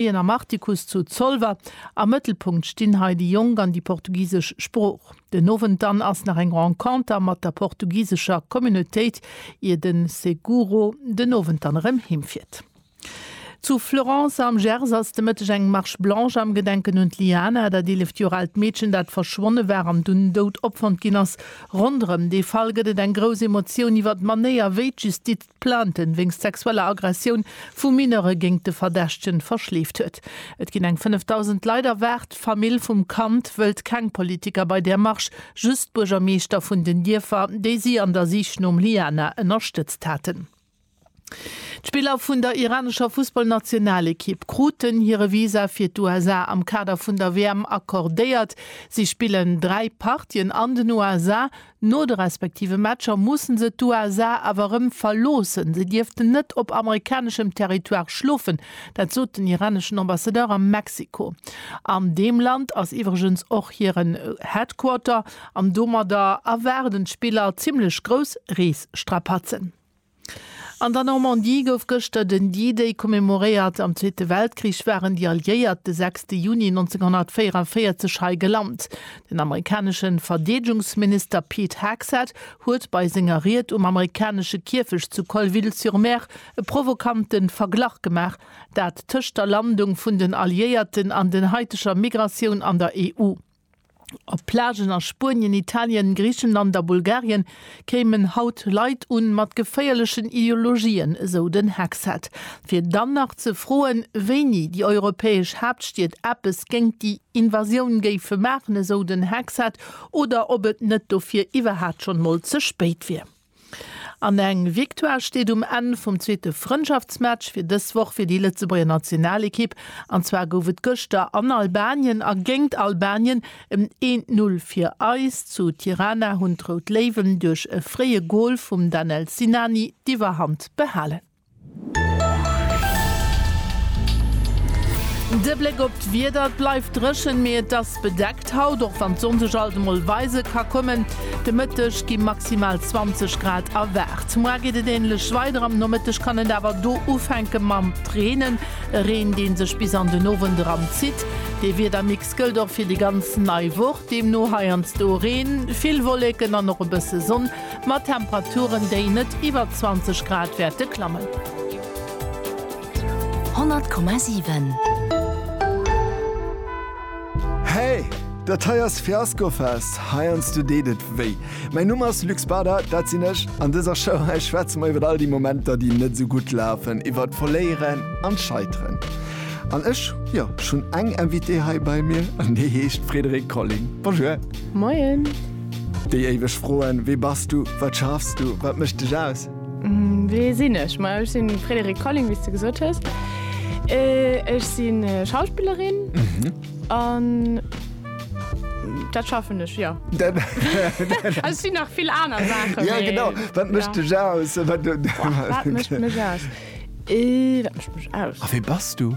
Wien am Artikuss zu Zolwer, Am Mëttelpunkt stinn hei déi Jonk an déi portugisesch Sprooch. Den Owend dann ass nach eng Renconter mat der portugisescher Communautéit, ier de Seguro den Owend dann erëm heemfiert. Zu Florence am Gers ass de Mëtteg eng Marche blanche am Gedenken un d'Liana, dat 11 Joer aalt Meedchen, dat verschwonne war an dunn dout opfonnt ginn ass. Ronderëm dee Fall gëtt et eng grouss Emotioun iwwer d'Manéier, wéi d'Justiz Plainten wéinst sexueller Aggressioun vu Mineure géingt de Verdächtegen verschleeft huet. Et ginn eng 5.000 Leit erwaart. D'Famill vum Kand wëllt keng Politiker bei där Marsch, just d'Buergermeeschter vun den Dierfer, déi si an der Sich nom Liana ënnerstëtzt haten. D'Spiller vun der iranescher Fussballnationalekipp kruten hire Visa fir d'USA am Kader vun der WM accordéiert. Si spillen dräi Partien an den USA, No de respektive Matcher mussen se d'USA awer erëm verloossen. Se dierften net op amerikaneschem Territoire schlofen, dat sot den iraneschen Ambassadeur a Mexiko. An deem Land ass iwwregens och hiren Headquarter an domadder erwaarden d'Spiller zimmlech grouss Reesstrapazen. An der Normandie gouf gëschter den D-Day commemoréiert. Am Zweete Weltkrich waren déi Alliéiert de 6 Juni 1944 hei gelant. Den amerikanesche Verdeedegungsminister Pete Hegseth huet bei senger Ried um amerikanesche Kierfecht zu Colleville-sur-Mer e provokante Verglach gemaach, dat tëscht der Landung vun den Alliéierten an den haiteger Migratioun an der EU. Op Plagen a Spuenien, Italien, Griichenland a Bulgarien kéimen haut Leit un mat geféierlechen Ideologien, esou den Hexheld. Fir dann nach ze froen, wéini déi europäesch Haaptstied eppes géingt déi Invasioun géife maachen, esou den Hexheld, oder ob et net dofir iwwerhat schonn mol ze spéit wier. An eng Victoire steet um Enn vum zweete Frëndschaftsmatch fir dës Woch fir déi Lëtzebuerger Nationalekipp. An zwar gouf et gëschter an Albanien a géint Albanien en een Null fir eis. Zu Tirana hunn d'Rout Léiwen duerch e fréie Gol vum Danel Sinani d'Iwwerhand behalen. De Bléck op d'Wieder, Et bleift dréchen, mee et ass bedeckt haut, och wann d'Sonn sech alt emol weise ka kommen. De Mëtteg gi maximal 20 Grad erwaart. Moar geet et änlech weider, am Nomëtteg kann et awer do ufänke mam Reenen. E Reen, dee sech bis an den Owend eran zitt. Dee Wiedermix gëllt och fir déi ganz nei Woch, deemno heiansdo Reen, vill Wolleken an och e bësse Sonn. Mat Temperaturen, déi net iwwer 20 Grad wäerte klammen. 100,7. Hey! Dat hei ass Fiaskofest, heiansdo deet et wéi. Mäin Numm ass Luc Spada, dat sinn ech. An dëser Show hei schwätze mer iwwer all déi Momenter, déi net esou gutt lafen, iwwer d'Voléieren an d'Scheiteren. An ech, jo, ech hunn eng Invitée hei bei mir an déi heescht Frédérique Colling. Bonjour! Moien! Déi éiweg Froen, Wie bass du? Wat schaffs du? Wat mécht dech aus? Wee sinn ech? Ma ech sinn d'Frédérique Colling, wéi s de gesot hues. Ech sinn Schauspillerin an dat schaffen ech, jo. Also et sinn nach vill aner Saachen, mee. Jo, genau. Wat mécht dech aus? Wat mécht mech aus? Wat mécht mech aus? A wee bass du?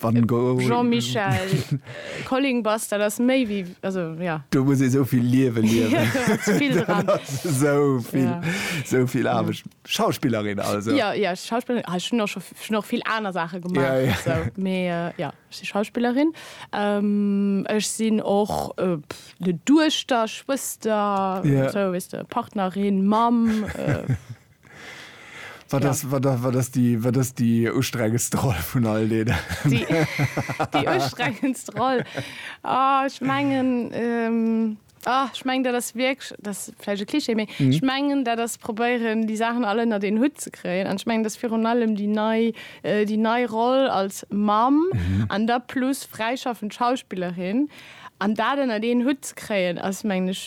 Wann go Jean-Michel Colling bass, dat ass méi wéi, also ja. Do muss ee sou vill Liewe liewen. Vill dran. Sou vill, ja. sou vill Aarbecht. Ja. Schauspillerin also? Ja, ja, Schauspillerin. Ah, ech hunn och scho, schon och vill aner Saache gemaach. Ja, ja. So, mee äh, ja, ech si Schauspillerin. Ähm, ech sinn och äh, de Duechter, Schwëster, ja. sou, weißt du, Partnerin, Mamm. Äh, Wat ass, ja. wat, wat ass déi, wat ass déi ustrengendst Roll vun all deene? Déi, déi ustrengendst Roll. Ah, ech mengen, ähm, ah, ech mengen, dat ass wierklech, dat ass vläicht e Klischee, mee ech mengen, dat ass probéieren, déi Saachen all ënnert een Hutt ze kréien. An ech mengen, dat ass virun allem déi nei, déi nei Roll als Mamm an da plus fräischaffend Schauspillerin. An dat ënnert een Hutt ze kréien, ass, mengen ech,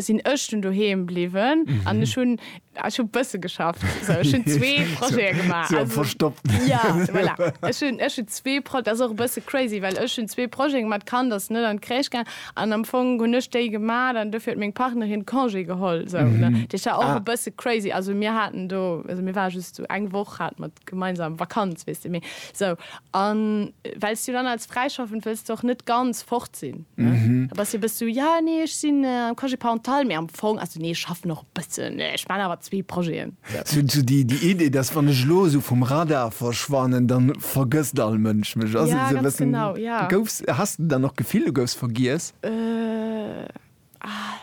sinn ech dunn doheem bliwwen an ech hunn ech hu bësse geschafft. Sou ech hunn zwee Projete gemaach. Sou am Verstoppten. Jo, voilà. Ech hunn, ech hunn zwee Pro-, dat ass och e bësse crazy, well ech hunn zwee Projete gemaach. D'Kand ass net an d'Crèche gaang an am Fong hunn ech déi gemaach an dofir huet meng Partnerin Congé geholl sou, ne. Dat ass jo och e bësse crazy. Also mir haten do, also mir ware just sou eng Woch hate mer gemeinsam Vakanz, weess de, mee sou. A well s du dann als Fräischaffend wëlls de och net ganz fort sinn, ne? Da bass de e bëssi sou, ja, nee, ech sinn am Congé parental, mee am Fong, also nee, ech schaffen och e bëssen, nee, ech maachen awer zwee Projeten. Sou sou déi déi Idee, dass wann ech elo esou vum Radar verschwannen, dann vergësst all Mënsch mech. Ass et Ja, esou e ganz bëssen, genau, ja. goufs, hass de dann och d'Gefill, du goufs vergiess? Äh, ah,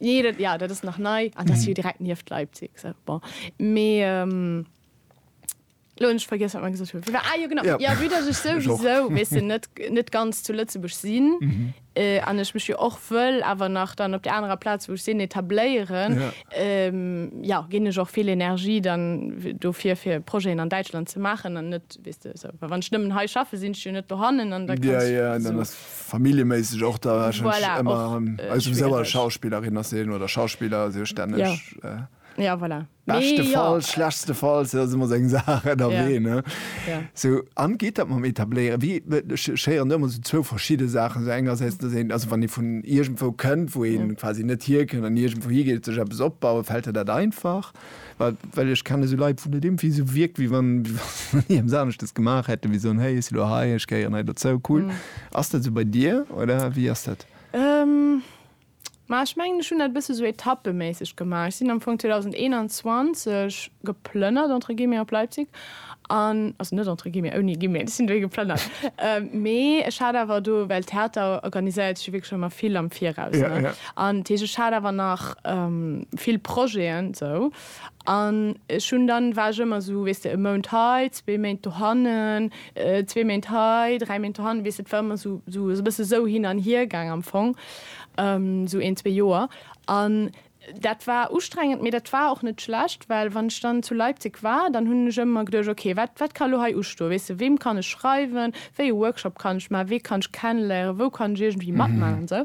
Jo, dat ass nach nei an dat ass jo direkt nieft Leipzig. Sou, bon. Mee elo hunn ech vergiess, wat mer gesot hunn. Ah jo, genau, jo, vue datt ech souwisou, weess de, net, net ganz zu Lëtzebuerg sinn an ech mech jo och wëll awer nach dann op där anerer Plaz, wou ech sinn, etabléieren, jo, ginn ech och vill Energie dann dofir, fir Projeten an Däitschland ze maachen an net, weess de, sou. Well wann ech nëmmen hei schaffe sinn ech jo net dohannen an da kann ech. Familljeméisseg och da wahrscheinlech Voilà, ëmmer och, ähm, äh, also sou a schwiereg. Schauspillerin ass een oder Schauspiller ass jo stänneg Ja. äh, Ja, voilà. Mee ja. beschtefalls, schlechstefalls, dat ass ëmmer sou eng Saach ënnerwee, Ja. ne? Ja. Sou, an geet dat mam Etabléieren? Wéi, be, ech, ech héieren do ëmmer sou zwou verschidde Saachen. Sou engersäits, dass een, also wann ee vun iergendwou kënnt, wou ee quasi net hierkënnt an iergendwou higeet, sech eppes opbauen, fält der dat einfach? Well, well ech kenne sou Leit, wou dat iergendwéi sou wierkt, wéi wann, wéi wann déi eppes aneschtes gemaach hätten, wéi soen, hey, ech si lo hei, ech gehéieren hei dozou, cool. Ass dat sou bei dir, oder wéi ass dat? Ma ech mengen, ech hunn dat e bësse sou etappeméisseg gemaach. Ech sinn am Fong 2021 geplënnert, entre guillemets, op Leipzig An, also net entre guillemets, ouni Guillemets, ech sinn do ee geplënnert, mee ech hat awer do, well Theater organiséiert sech jo wierklech ëmmer vill am Viraus, ne, an d'heescht ech hat awer nach vill Projeten esou an ech hunn dann, war ech ëmmer esou, weess de, e Mount hei, zwee Méint dohannen, zwee Méint hei, dräi Méint dohannen, weess de, et war ëmmer esou e bësse esou hin an hir gaangen am Fong, esou een, zwee Joer. An Dat war ustrengend, mee dat war och net schlecht, well wann ech dann zu Leipzig war, dann hunn ech ëmmer geduecht, okay, wat, wat ka elo hei ustoen, weess de, weem kann ech schreiwen, wéi e Workshop kann ech maachen, wee kann ech kenneléieren, wou kann ech iergendwéi matmaachen an esou.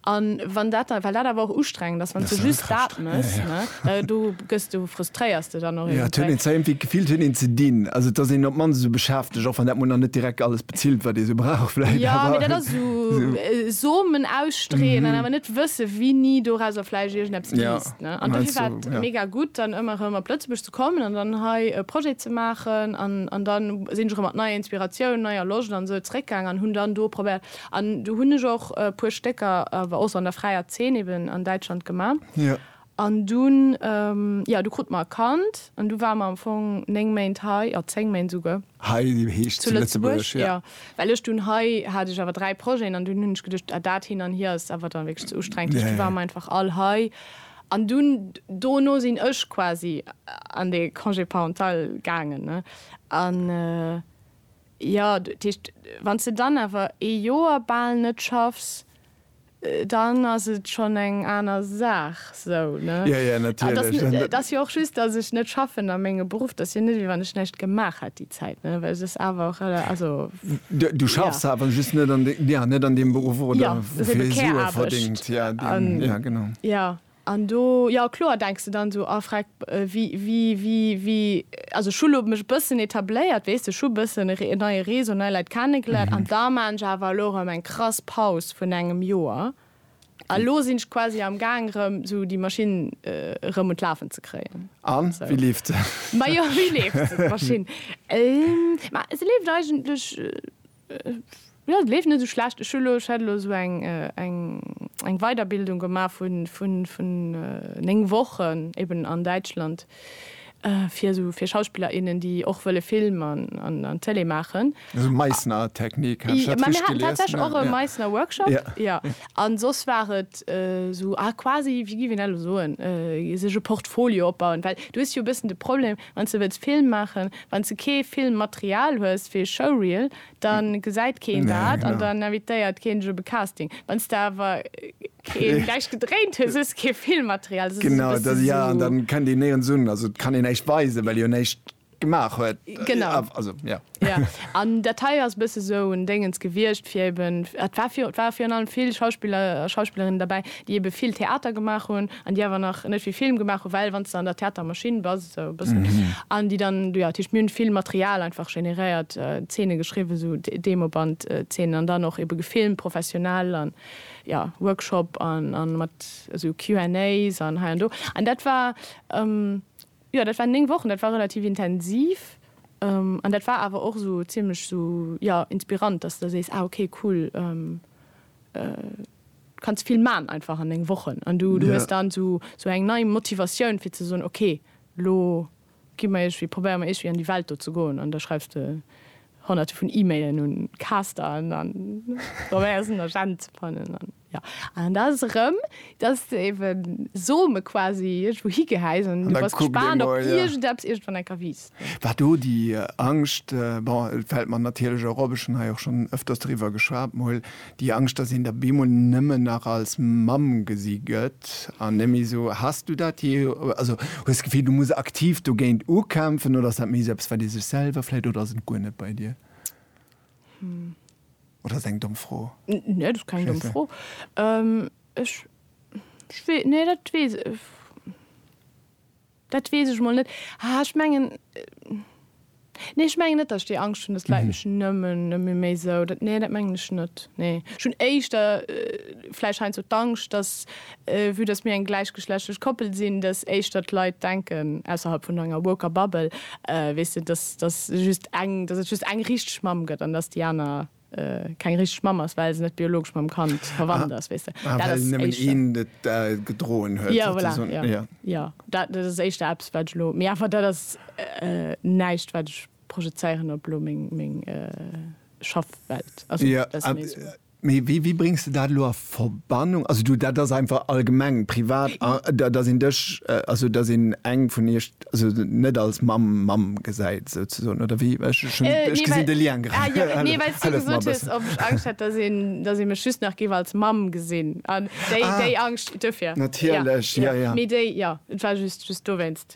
An wann dat dann, well dat awer och ustrengend ass, wann s de just dat méchs, ne, da, do gëss de, frustréiers de dann och iergendwéi. Jo, et huet een zwar iergendwéi d'Gefill, et huet een ze dinn, also et ass een op d'mannst esou beschäftegt, och wann dat mol nach net direkt alles. Bezilt wat ee sou brauch vläit. Jo, mee dat ass esou Somen ausstreeën an awer net wësse wini dorauser vläicht iergendeppes wiisst. An dofir war et mega gutt dann ëmmer erëm op Lëtzebuerg ze kommen an dann hei e Projet ze maachen an dann sinn ech erëm mat neier Inspiratioun, neier Loscht an esou zeréckgaang an hunn dann do probéiert an do hunn ech och e puer Stécker awer och sou an der fräier Zeen eben an Däitschland gemaach. An dunn, jo, du krut mer e Kand an du war mer am Fong 9 Méint hei, jo, 10 Méint esouguer. Hei heescht zu Lëtzebuerg, jo. Jo, well ech dunn, hei hat ech awer 3 Projeten an dunn hunn ech geduecht, ah, dat hin an hier ass awer dann wierklech ze ustrengend. Duerch du war mer einfach all hei an dunn dono sinn ech quasi an de Congé parental gaangen, ne. An, jo, dat heescht, wann s de dann awer ee Joer bal net schaffs, Dann ass et schonn eng aner Saach, sou, ne? Jo, jo, natierlech. Et ass jo och just, datt ech net schaffen a mengem Beruff. Dat ass jo net, wéi wann ech näischt gemaach hätt déi Zäit, ne? Well et ass awer och, also, jo. Du schaffs awer just net an, jo, net an deem Beruff, oder? Jo, et ass ebe Care-Aarbecht. Wou fir s du e verdéngt, jo, deen, jo, genau. Jo, An do, jo kloer, denks de dann esou, oh freck, wéi, wéi, wéi, wéi, also ech hu lo mech e bëssen etabléiert, weess de, ech hu e bëssen e neie Réseau, nei Leit kennegeléiert an da maan ech awer elo erëm eng krass Paus vun engem Joer a lo sinn ech quasi am Gaang erëm esou déi Maschinn erëm un d'Lafen ze kréien. A wéi leeft se? Majo, wéi leeft se d'Maschinn? Ma se leeft eigentlech. Et leeft net esou schlecht. Ech hat elo esou eng Weiderbildung gemaach vun néng Wochen eben an Däitschland fir esou fir Schauspiller, innen, déi och wëlle Film an Tëlee maachen. Esou Meissner-Technik, hat ech dat richteg gelies? Mir haten tatsächlech och e Meissner-Workshop, jo. A soss war et esou, ah, quasi, wéi géif een dat elo soen, sech e Portfolio opbauen. Well du hues jo e bëssen de Problem, Wanns de wëlls Film maachen, wanns de kee Filmmaterial hues fir e Showreel, dann gesäit keen dat an dann invitéiert keen dech op e Casting. Wanns de awer keen näischt gedréint hues, hues de kee Filmmaterial. Dat ass esou e bësse sou. Genau, jo, an dann kënnt een néirens un. Also et kann een näischt weisen, well ee jo näischt gemaach huet. Genau. Also, jo. Ja, an dat hei ass e bësse sou en Déngens gewiescht, fir eben, et war virun, et ware virun allem vill Schauspiller a Schauspillerinnen derbäi, déi ebe vill Theater gemaach hunn an déi awer nach net vill Film gemaach hunn, well wann s de an der Theatermaschinn bass, esou e bëssen, an déi dann, jo, dat heescht, mir hunn vill Material einfach generéiert, Zeene geschriwwen, sou Demobandzeenen, an dann och ebe gefilmt professionell an, jo, Workshop an, an mat esou Q&As an hei an do. An dat war, Jo, dat waren 9 Wochen, dat war relativ intensiv an dat war awer och esou zimmlech esou, jo, inspirant, dass de sees, ah ok, cool, du kanns vill man einfach an 9 Wochen an du hues dann esou eng nei Motivatioun fir ze soen, ok, lo gi mer iergwéi, probéiere mer iergwéi an déi Welt do ze goen an da schreifs de honnerte vun E-Mailen un Caster an probéiers en Agent ze fannen. Jo, an da ass et erëm, dass de ebe Some quasi iergendwou higehäis an du bass gespaant, ob iergendeppes iergendwann enker wiisst. War do déi Angscht, bon, et fält mer natierlech och op, ech hunn hei och schonn ëfters driwwer geschwat mol, déi Angscht, dass een der bemol nëmmen nach als Mamm gesi gëtt an net méi esou. Has du dat jee, also hues d'Gefill, du muss aktiv dogéint ukämpfen oder ass dat méi esou eppes, wat ee sech selwer vläicht, oder ass et guer net bei dir? Oder ass eng domm Fro? Nee, dat ass keng domm Fro. Ech, ech wee, nee dat weess, dat weess ech mol net. Ah ech mengen, nee ech mengen net, datt ech déi Angscht hunn, datt d'Leit mech nëmmen, nëmme méi esou, dat, nee dat mengen ech net, nee. Ech hunn éischter vläicht heiansdo d'Angscht, datt Vue dass mir eng gläichgeschlechtlech Koppel sinn, dass éischter d'Leit denken, ausserhalb vun enger woker Bubble, weess de, dass dass just eng, dass et just eng richteg Mamm gëtt an dass déi aner keng richteg Mamm ass, well se net biologesch mam Kand verwannt ass, weess de. Ah, well nëmmen een et gedroen huet. Jo, voilà, jo. Jo. Jo, dat dat ass éischter eppes, wat ech elo, mee awer dat ass näischt, wat ech projezéieren op elo meng meng Schaffwelt. Also, dat ass méi esou. Mee wéi, wéi bréngs de dat elo a Verbannung? Also du, dat ass einfach allgemeng privat, dass een dech, also dass een eng vun iech also net als Mamm, Mamm gesäit souzesoen, oder wéi? Ech hu schonn, ech gesinn de Lien grad. Ah jo, nee, well s du gesot hues, ob ech Angscht hätt, dass een, dass ee mech just nach géif als Mamm gesinn. An déi, déi Angscht, duerfir. Natierlech, jo, jo. Mee déi, jo, et war just, just dowéinst.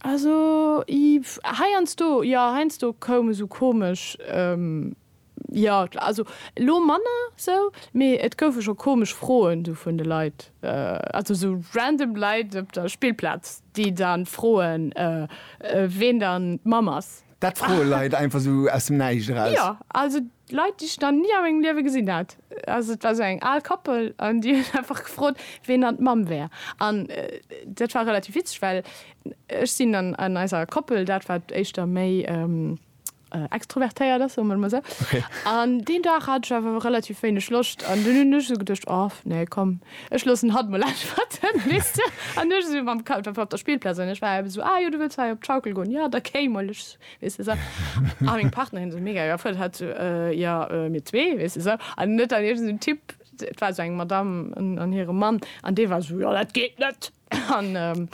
Also heiansdo, jo heiansdo koum esou komesch, jo also elo manner sou, mee et goufe scho komesch Froen sou vun de Leit, also sou random Leit op der Spillplaz, déi dann froen ween dann d'Mamm ass. Dat froe Leit einfach sou aus dem Näischt eraus? Jo, also Leit, déi ech nach ni a mengem Liewe gesinn hat. Also et war esou eng al Koppel an déi huet einfach gefrot, ween dann d'Mamm wär. An dat war relativ witzeg, well ech sinn an an eiser Koppel dat, wat éischter méi extrovertéiert ass, soe mer et emol esou. An deen Dag hat ech awer relativ wéineg Loscht an dunn hunn ech esou geduecht, oh nee komm, ech loossen hatt emol äntwerten, weess de. An du ech esou mam Kapp op der Spillplaz an ech war eben esou, ah jo, du wëlls hei op d'Schaukel goen, jo da kéi mol, ech Weess de sou. A meng Partnerin esou mega geerfreet, hat esou, Äh, jo, mir zwee, weess de sou. An net dann iergend esou en Typ, et war esou eng Madamm an hire Mann, an dee war esou, Jo, dat geet net. An,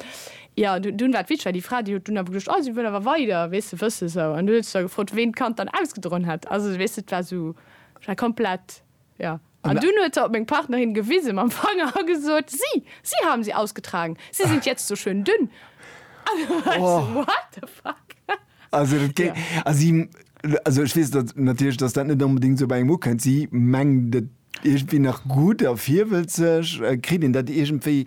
jo, dunn war et witzeg, well déi Fra, déi huet dunn awer geduecht, Oh, si wëll awer weider, weess de, wëss de sou. An du huet sech da gefrot, ween d'Kand dann ausgedroen hätt. Also, weess de, et war esou, et war komplett. Ja. An dunn huet se op meng Partnerin gewise mam Fanger a gesot, Si, si haben sie ausgetragen, sie sind jetzt so schön dünn. An du war ech so, what the fuck? Also, dat géi, also, si, also ech weess dat natierlech, dass dat net onbedéngt esou bei engem ukënnt. Si mengt et iergendwéi nach gutt a virwëllt sech. Kritt een dat iergendwéi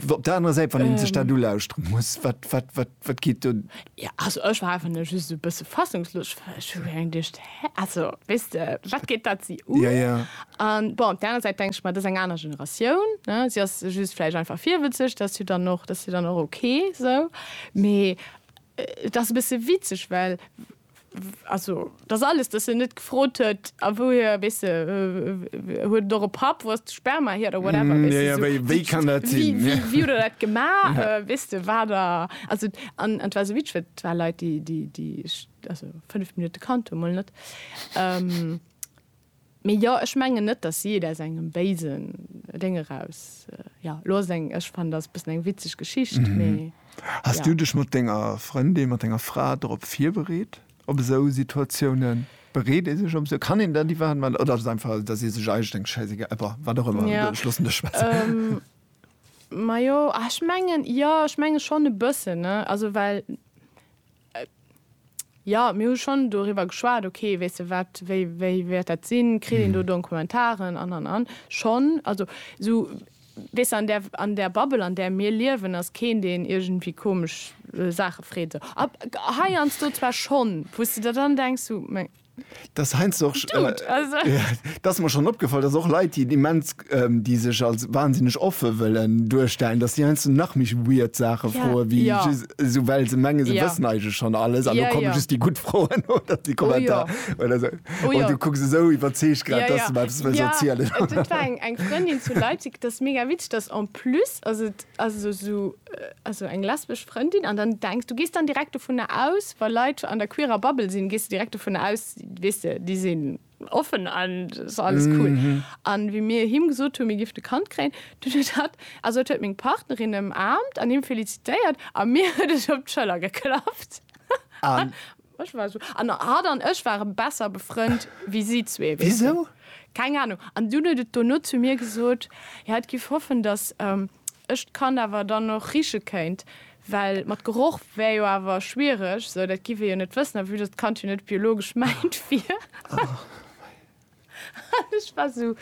op der anerer Säit, wann ee sech dat ulauschteren muss? Wat, wat, wat? Wat geet do? Jo, also ech war einfach nëmme just esou e bësse fassungslos. Ech hu scho laang geduecht, Hä? Also, weess de, wat geet dat si un? Ja, ja. A bon, op där aner Säit denke ech mer, dat ass eng aner Generatioun, ne? Si ass just vläicht einfach virwëtzeg, dat ass jo dann och, dat ass jo dann och ok esou. Mee et ass e bësse witzeg, well. Also, dat ass alles, dass en net gefrot huet, a wouhier, weess de, huet et och e Papp, wou ass de Sperma hier oder whatever, weess de, sou, wéi kann dat sinn, wéi, wéi huet der dat gemaach, weess de, war der, also, an et war esou witzeg, well et war Leit, déi, déi, déi, also, 5 Minutte kannt hu, mol net. Mee jo, ech mengen net dass si et aus engem béisen Déng eraus, jo, lo ass et eng, ech fannen, ass e bëssen eng witzeg Geschicht, mee Has du jo. dech mat denger Frëndin, mat denger Fra drop virbereet, op esou Situatiounen? Bereet ee sech op esou, kann een dat iwwerhaapt maachen, oder ass et einfach, dass ee sech eigentlech denkt, schäissegal, eba, wat och ëmmer, Ja, ech loossen dech schwätzen? majo, ah, ech mengen, jo, ech menge schonn e bëssen, ne, also well Jo, mir hu schonn doriwwer geschwat, okay, weess de wat, wéi wéi wäert dat sinn, kritt een do Donkumentaren an an an. Schonn, also esou, weess de, an där an där Bubble an där mir liewen ass keen deen iergendwéi komesch Saache freet esou. Ab heiansdo zwar schonn, wou s de der dann denks, sou, meng. Das heinsst och dass mer schon opgefall, dass och Leit déi immens déi sech als wahnsinneg offe wëllen duerstellen, dass déi heiansdo nach méi weird Saache froe wéi just esou well se menge se wëssen eigentlech schon alles an do komme just déi gutt Froen oder déi Kommentar oder sou oh du kucks esou iwwerzeegt grad dass de mer eppes wëlls erzielen. Et war eng Frëndin zu Leipzig, dat ass mega witzeg, dass en plus ass et also sou also eng lesbesch Frëndin an dann denkst du gehst dann direkt vu ne aus weil Leiit an der queerer Babbel sinn gehst du direkt vu ne aus wisse die sinn offen an alles cool an mm -hmm. wie mir him gesot hun mir gift de Kand kréien du hat also huet meng Partnerin em Aamt an him felicitéiert a mir huet ech op d'Schëller geklappt an ech war so an hat an ech ware besser befrënnt wie si zwee wieso keng Ahnung an du huet et dono zu mir gesot ja et giff hoffen dass ähm, Ech d'Kand awer dann och riche kéint, well mat Geroch wär jo awer schwiereg, sou dat giff ee jo net wëssen, a vue dass d'Kand jo net biologesch mäint wier. An ech war sou,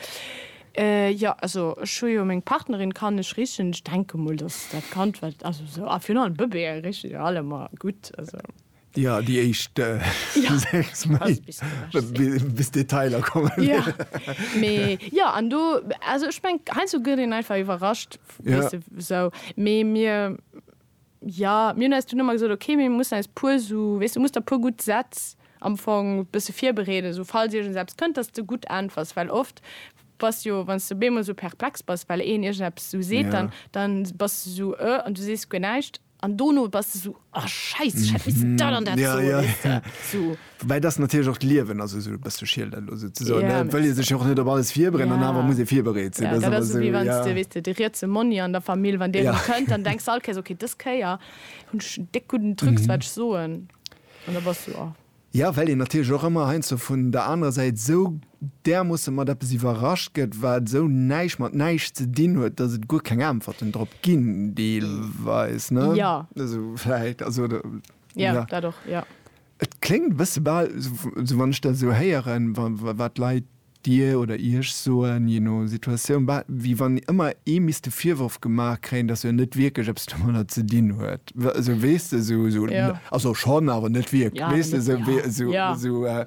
Jo, also ech hu jo meng Partnerin, kann ech richen? Ech denke mol, dass dat Kand, wat, also sou, a virun allem Bëbeeë riche jo allemer gutt, also. Ja, déi éischt sechs Méint, bis d'Detailer kommen. Ja, mee jo, an do, also ech mengen, heiansdo gëtt een einfach iwwerrascht, weess de, esou. Mee mir, jo, mir hunn eis dunn ëmmer gesot, okay, mir mussen eis e puer esou, weess de, musst der e puer gutt Sätz am Fong e bësse virbereeden, esou falls iergends eppes kënnt, dass s de gutt äntwers. Well oft bass jo, wann s de op eemol esou perplex bass, well een iergendeppes esou seet, dann bass de esou, Ë? An du sees guer näischt. An dono bass de sou, oh Scheiss, ech hätt missen dat an dat soen, weess de, sou. Woubäi dass natierlech och d'Liewen ass esou e bësse Schiel dat elo souzesoen, ne? Et wëll ee sech jo och net op alles virbereeden an awer muss ee virbereet sinn. Dat ass ëmmer esou, ja. Dat ass esou, wéi wann s de, weess de, de rietse Monni an der Famill, wann deen erëm kënnt, dann denks de all Kéiers, okay, dës Kéier hunn ech en déck gudden Trucs wat ech soen. An da bass du, oh. Jo, well een natierlech och ëmmer heiansdo vun der anerer Säit esou därmoosse mat eppes iwwerrascht gëtt, wat esou näischt mat näischt ze dinn huet, datt et guer keng Äntwerten drop ginn, deelweis. Jo. Also vläicht, also oder, jo. Jo, dat och, jo. Et kléngt e bësse bal, esou wann ech dat esou héieren, wat d'Leit. Dir oder Iech soen, je no Situatioun, bah, wéi wann ëmmer ee misst de Virworf gemaach kréien, dass en net wierklech eppes domadder ze dinn huet. Esou, weess de, esou, esou, Ja. Also schonn, awer net wierklech. Ja, awer Weess de, net, esou, ja. wéi, esou, Ja. esou, äh,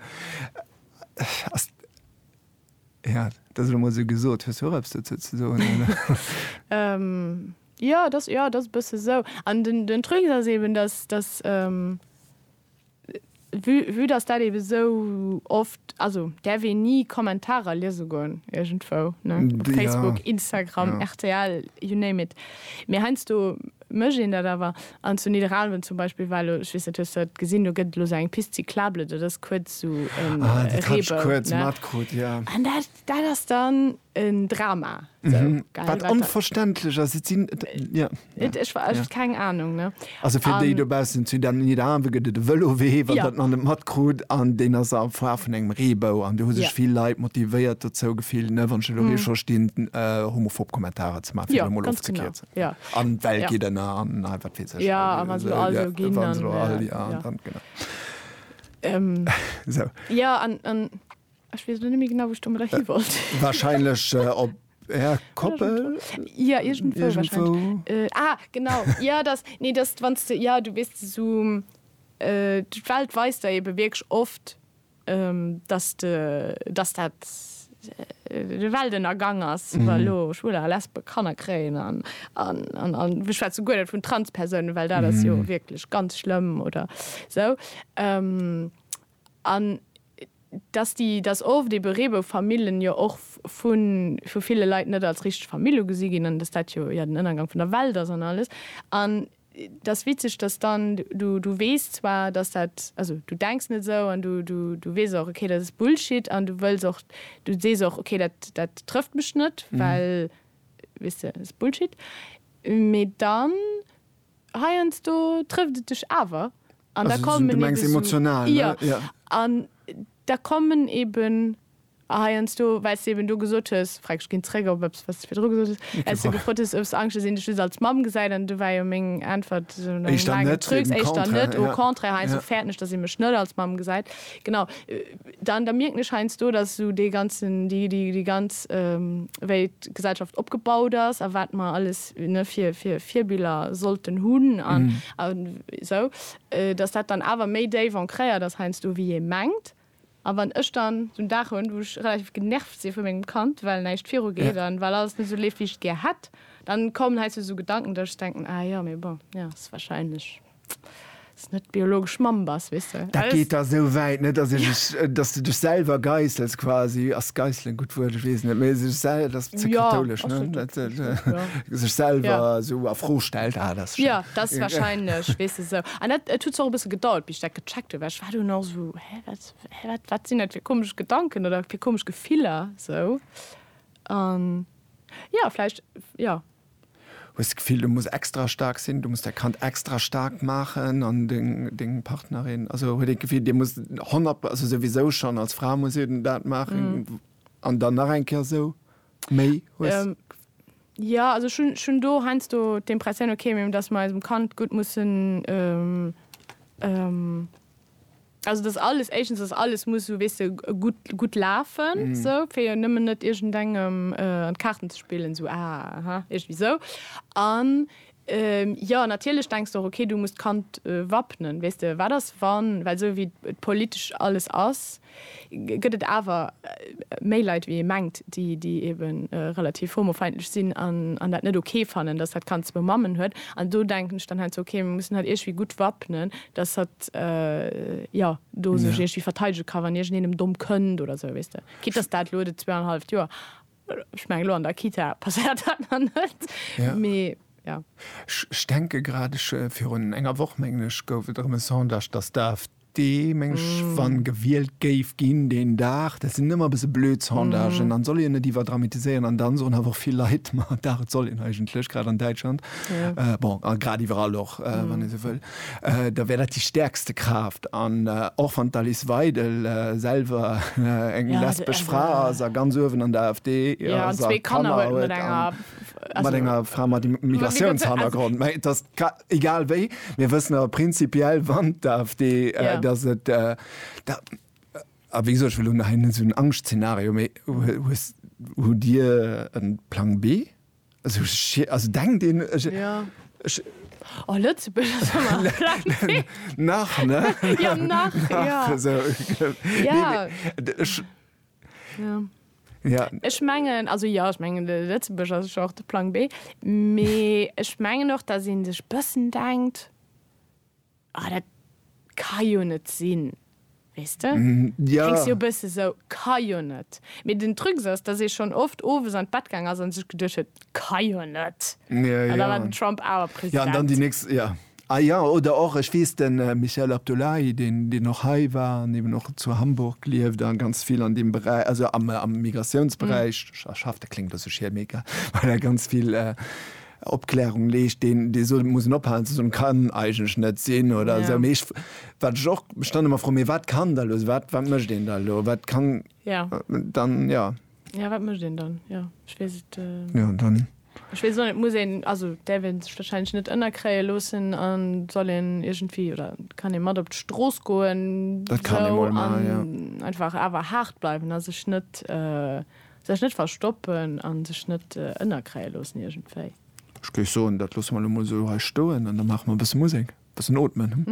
ass, ja, dat ass elo mol esou gesot. Hues du och eppes dozou ze soen, oder? Ähm, ja, dat ass, ja, dat ass e bësse esou. An den, den Truc ass eben, dass, dass, ähm, Vue dass dat eben esou oft, also däerf een ni Kommentarer liese goen iergendwou, ne, op Facebook, Instagram, rtl, you name it. Mee heiansdo mécht een dat awer. An zu Nidderaanwen zum Beispill war elo, ech weess net, hues du dat gesinn, do gëtt et elo esou eng Piste cyclable, dat ass kuerz esou e Reebou, ne, an dat. Dat ass dann en Drama. Wat onverständlech ass. Et sinn, jo. Ech hu keng Anung. Also fir déi dobaussen, zu Nidderaanwen gëtt et e Vëlowee, wann der et nach net matkrut. An deen ass am Foire vun engem Reebou. An do hu sech vill Leit motivéiert dozou gefillt, ne, wann ech elo ree scho stinn, homophob Kommentarer ze maachen, fir et emol ofzekierzen. An d'Welt geet ënner an nei, wat weess ech. Jo, a wa se elo all esou ginn, dann. Wa se elo all, jo, dann, genau. Esou. Jo, an. Ech wees lo net méi genau wou ech domadder hi wollt. Wahrscheinlech op är Koppel? Ja, irgendwou wahrscheinlech. Irgendwou. Äh, ah, genau. Ja, dass, nee, dass du, wanns du, ja, du wees esou, äh, d'Welt weist der eben wierklech oft, ähm, dass de, dass dat de Weltennergang ass, wa lo Schwuler a Lesbe Kanner kréien an, an, an, an ech schwätze guer net vun Transpersounen, well dat ass jo wierklech ganz schlëmm oder sou. Ähm, An dass déi, dass oft ebe Reeboufamillen jo och vu ville Leit net als richteg Famill ugesi ginn an dass dat jo ja den Ënnergang vun der Welt ass an alles. An et ass witzeg, dass dann, du, du weess zwar, dass dat, also du denks net esou an du, du, du weess och, okay, dat ass Bullshit an du wëlls och, du sees och, okay, dat, dat trëfft mech net, well, weess de, ass Bullshit. Mee dann Heiansdo trëfft et dech awer an da kommen eben heiansdo, well s de eben do gesot hues, frag ech ginn zréck op eppes wat s de virdru gesot hues, well s de gefrot hues, hues Angscht, dass een dech just als Mamm gesäit an do war jo meng Äntwert esou no engem laangen Trucs, éischter net, au contraire, heiansdo fäerten ech, dass ee mech net als Mamm gesäit, genau, dann da mierken ech heiansdo, dass esou dee ganzen, déi ganz, wéi d'Gesellschaft opgebaut ass a wat mer alles Virbiller sollten hunn an esou, datt dat dann awer méi déif ancréiert ass heiansdo wéi ee mengt. A wann ech dann esou en Dag hunn, wou ech relativ genervt si vu mengem Kand, well näischt virugeet an well alles net esou leeft, wéi ech et gär hätt, da kommen heiansdo esou Gedanken, datt ech denken, ah jo, mee bon, jo, ass warscheinlech. net d'biologesch Mamm bass, weess de. Dat geet da esou wäit, ne, dass ech, dass de dech selwer geißels quasi. Ass geißelen e gutt Wuert? Ech weess net, mee sech sel-, dat ass ze kathoulesch, ne? Dat, jo. Sech selwer esou a Fro stellt, ah, dat ass schéin. Jo, dat ass wahrscheinlech, weess de, esou. An dat, et huet zwar och e bësse gedauert, bis ech dat gecheckt hunn, well ech war dunn och esou, hä, wat, hä, wat, wat sinn dat fir komesch Gedanken oder fir komesch Gefiller, esou. An, jo, vläicht, jo. hues d'Gefill du muss extra staark sinn, du muss däi Kand extra staark maachen an deng deng Partnerin, also huet een d'Gefill dir musst 100 also souwisou schonn als Fra muss ee dat maachen an dann nach eng Kéier esou méi hues. Jo, also ech hunn ech hunn do heiansdo d'Impressioun, okay, datt mer eisem Kand gutt mussen. Also et ass alles, éischtens ass alles, muss esou, weess de, gutt, gutt lafen esou, fir jo nëmmen net iergendengem an d'Kaarten ze spillen, esou ah, aha, iergendwéi esou. An jo, natierlech denks de och, okay, du muss d'Kand wappnen, weess de, wat ass wann, well esou wéi et politesch alles ass, gëtt et awer méi Leit wéi ee mengt, déi déi ebe relativ homofeindlech sinn an dat net ok fannen, datt dat Kand zwou Mammen huet. An do denken ech dann halt sou, ok, mir mussen hatt iergwéi gutt wappnen, datt hatt jo do sech iergwéi verteidege ka wann iergendeen em domm kënnt oder sou, weess de, quitte datt dat elo de zwee an e halleft Joer. Ech mengen elo an der Kita passéiert dat nach net, mee jo. Ech denke grad, ech, virun enger Woch mengen ech, gouf et erëm e Sondage, datt d'AfD mengen ech, wa gewielt géif ginn deen Dag, dat sinn ëmmer e bësse blöd Sondagen, an soll een net iwwerdramatiséieren, an dann soen awer och vill Leit, ma dach et soll een eigentlech, grad an Däitschland, bon a grad iwwerall och, wann ee sou wëll. da wär dat déi stäerkste Kraaft. An och wann d'Alice Weidel selwer eng lesbesch Fra ass a ganz uewen an der AfD ass a Kanner huet a mat enger Fra mat Immigratiounshannergrond, mä et ass egal wéi, mir wëssen awer prinzipiell, wann d'AfD, datt et da, a wéi gesot, ech wëll elo nach hei net esou en Angschtszenario, mä hues, hutt Dir e Plang B? Esou schi-, also denkt een, ech, Ja. ech, Oh, Lëtzebuerg ass ëmmer am Flammee. nach, ne? Ja, nach, nach, ja. esou, gl-, Ja. nee, mee, d', ech, Ja. ja. Ech mengen, also jo, ech mengen, de Lëtzebuerg ass jo och de Plang B, mee ech mengen och, datt ee sech bëssen denkt, Ah, dat ka jo net sinn, weess de? Ja. Kléngs jo e bësse sou, ka jo net. Mee den Trucs ass, dass ee schonn oft owes an d'Bett gaang ass a sech geduecht huet, ka jo net. Ja, An da war ja. den Trump awer President. Ja, an dann déi nächst, ja. Ah ja, oder och, ech weess, de Michael Abdullahi, deen, deen och hei war an eben och zu Hamburg lieft a ganz vill an deem Beräich, also am, am Migratiounsberäich schafft, dat kléngt e bësse schier, mee egal, well e ganz vill, Opklärung leescht, deen, dee sot, et muss een ophalen ze soen, kann eigentlech net sinn oder esou. Mee ech, wat ech och, ech dann ëmmer froen, mee wat kann da elo sinn? Wat, wat mécht een da elo? Wat kann dann, jo. Jo, wat mécht een dann? Jo, ech weess et. Jo, dann. Ech weess och net, et muss een, also däerf ee sech wahrscheinlech net ënnerkréie loossen a soll een iergendwéi, oder kann ee mat op d'Strooss goen, esou, an einfach awer haart bleiwen a sech net Sech net verstoppen a sech net ënnerkréie loossen iergendwéi. Ech géif soen, dat loosse mer elo mol sou hei stoen an da maache mer e bësse Musek, e bëssen ootmen.